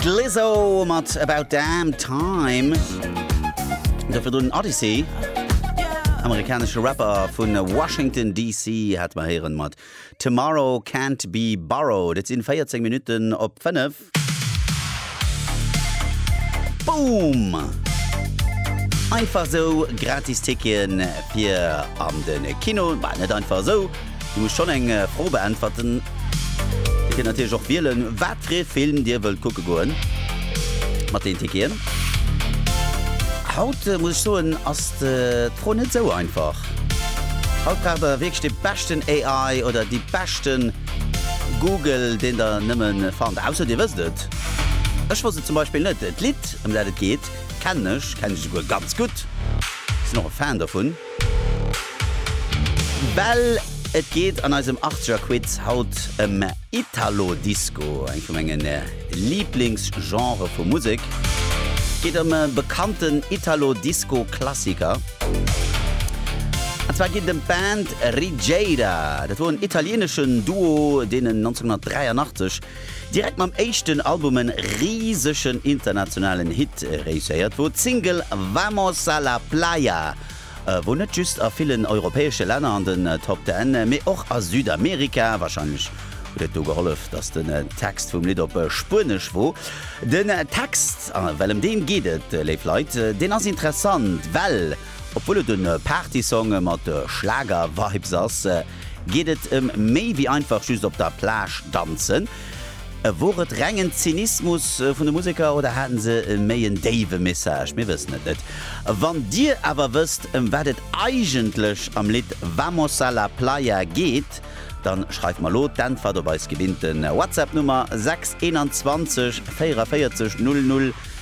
D'Lizzo mat About Damn Time. Dofir do den Odyssey. Amerikanesche Rapper vun Washington DC hat mer héieren mat Tomorrow Can't Be Borrowed. Et sinn 14 Minutten op 5. Boom! Einfach esou gratis Ticketen fir an den Kino. Bah net einfach esou, Dir musst schonn eng Fro beäntwerten. Dir kënnt natierlech och wielen, wat fir ee Film Dir wëllt kucke goen mat den Ticketen. Haut muss ech soen, ass d'Fro net esou einfach. Haut braucht Der wierklech de beschten AI oder de beschte Google, deen Der nëmme fannt. Ausser Dir wësst et. Ech wosst et zum Beispill net. D'Lidd, ëm dat et geet, kennen ech, kennen esouguer ganz gutt. Sinn och e Fan dovun. Bell, et geet an eisem Achtzegerquiz haut ëm Italo Disco, eng vu menge Liiblingsgenrë vu Musek. Et geet ëm e bekannten Italo Disco Klassiker. An zwar geet et ëm d'Band Rigéira. Dat wor en italieneschen Duo, deen en 1983 Direkt mam éischten Album en risegen internationalen Hit réusséiert, wou d'Single Vamos a la Playa, wou net just a villen europäesche Länner an den Top Ten, mee och a Südamerika, wahrscheinlech huet et do gehollef, dass den Text vum Lidd op Spuenesch wor. Den Text, well em deem geet et, léif Leit, deen ass interessant, well. Obwuel et e Partysong mat Schlager-Vibes ass, geet et ëm méi wéi einfach just op der Plage danzen. Wor et rengen Zynismus vun de Museker oder haten se méi en déiwe Message? Mir wëssen et net. Wann dir awer wësst ëm wat et eigentlech am Lidd Vamos a la playa geet, dann schreift mer elo d'Äntwert op eis gewinnten Whatsapp Nummer 6 21 44 00.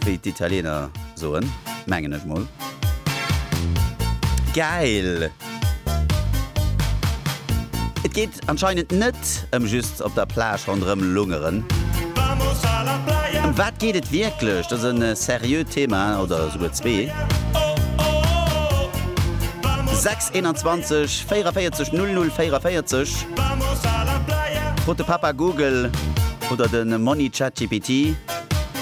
Wéi d'Italiener soen, mengen ech mol. Gäil! Et geet anscheinend net ëm just op der Plage ronderëm lungeren. Ëm wat geet et wierklech? Dat ass e seriö Thema, oder esouguer zwee. 6 21 44 00 44 Frot de Papa Google oder de Monni Chat GPT.